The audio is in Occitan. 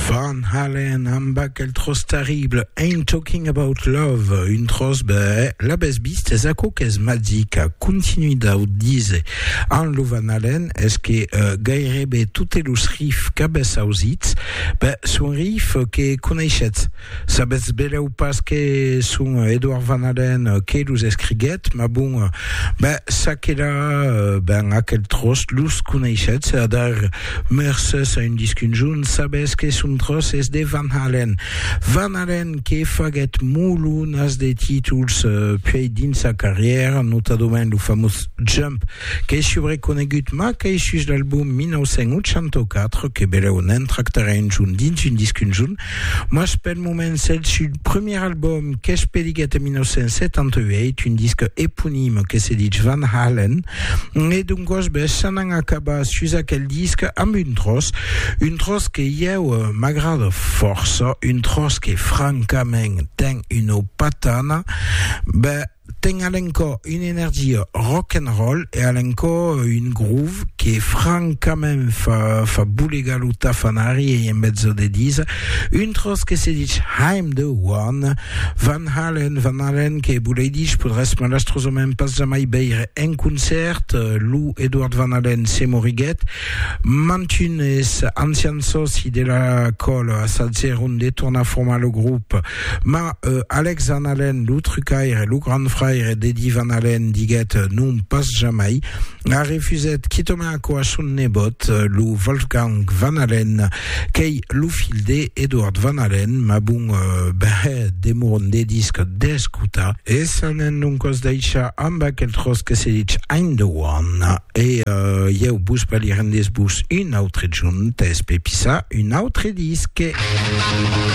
Van Halen amb aquel tròç terrible Ain't Talking About Love, un tròç bèh, l'avètz vist, es aquò qu'es magic, a continuit dau díser amb lo Van Halen, es que gairebe totes los riffs qu'avètz ausits, bèh, son riffs que coneishetz. Sabetz belèu pas que son Edouard Van Halen que los escriguèt, mas bon, ben, ça que la, ben, aquel tròç los coneishetz, a dar mercés a un disc un jorn, sabetz que son tròç es de Van Halen. Van Halen que faguèt molonas de títols puèi dins sa carrièra, notadament lo famós Jump, qu'es subreconegut, mas qu'es just l'album 1984, que belèu ne'n tractarè un jorn dins un disc un jorn, Mas pel moment s'el sud premier album qu'es peliguet en 1978, un disque eponime que se ditz Van Halen, e d'un gos bes s'an an acabar sus aquel disque amb un tròç, un tròç que ieu m'agrada fòrça, un tròç que francament ten una patana, beh, Ten a l'encò una energia rock and roll e a l'encò un groove que francament fa fa bolegar lo tafanari ei en mezzo de disa un tròç que se dich I'm the one Van Halen Van Halen que bolei dich podrèsses malastrosament pas jamai veire en concèrt lo Edward Van Halen se moriguèt mantunes ancians sòci de la còla assajèron de tornar formar lo grop Mas Alex Van Halen, lo trucaire, lo grand fraire d'Eddie Van Halen, diguèt non pas jamai, a refusèt quitament aquò a son nebòt, lo Wolfgang Van Halen, qu'ei lo filh de Edward Van Halen, mas bon, ben, demoron de disc d'escotar. E s'anèn donc os daishar amb aquel tròç que se ditz I'm the one, e ieu vos balirèn desbús un autre junt, es pepissar un autre disc.